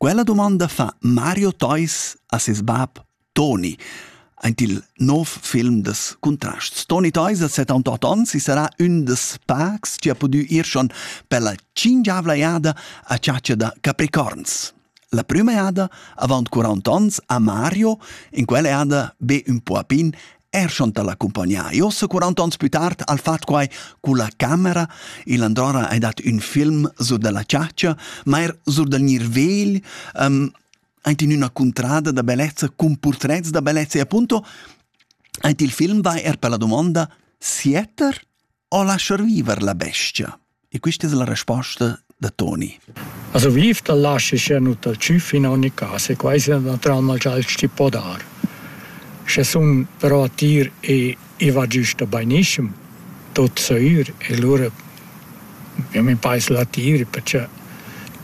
Quella dumonda fa Mario Theus a ses bab Toni aint il nouv film das Contrasts. Toni Theus ha 78 ons e sarà ün da pacs chi ha pudü ir schon pella tschingiavla jada a chatscha da capricorns. La prüma jada, avant 40 ons, ha Mario, in quella jada be ün po a pin, Er schon l'accumpagnar. Io so 40 ans più tard al fatto quai con la camera, il Androra ha dat un film su della ciaccia, ma er su del nirvegl, um, ant in una contrada da bellezza, con portrets da bellezza e appunto, ant il film vai er per la domanda Sieter ho lasciar viver la bestia? E questa è la risposta da Toni. Also vifta lasci nu dal tschüff in ogni caso e quasi una trauma gial sti po dar. Sche sun però a tir e i va giusta bainiscem, tot soir e lura io mi pais la tir perché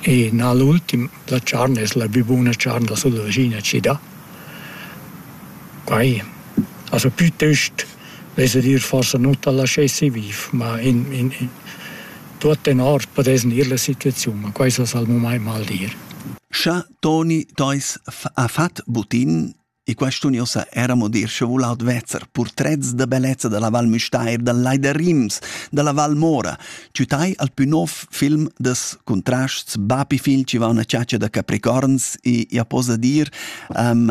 e na l'ultim la charn es la più buona charn la sul vecino ci dà. Quai also piuttost Vesa dir forsa nu t'al laschessi viv, ma in in in tuot tenor podess gnir la situaziun, ma quai s'es al mumaint mal dir. Scha Toni teis ha fat butin e quest'uniusa eramo dir scha voul advezzer purtrets da bellezza da la Val Müstair, dal Lai da Rims, da la Val Mora, tütai al pü nov film das Contrasts Bapi Fil chi va una chatscha da capricorns e ja posa dir, um,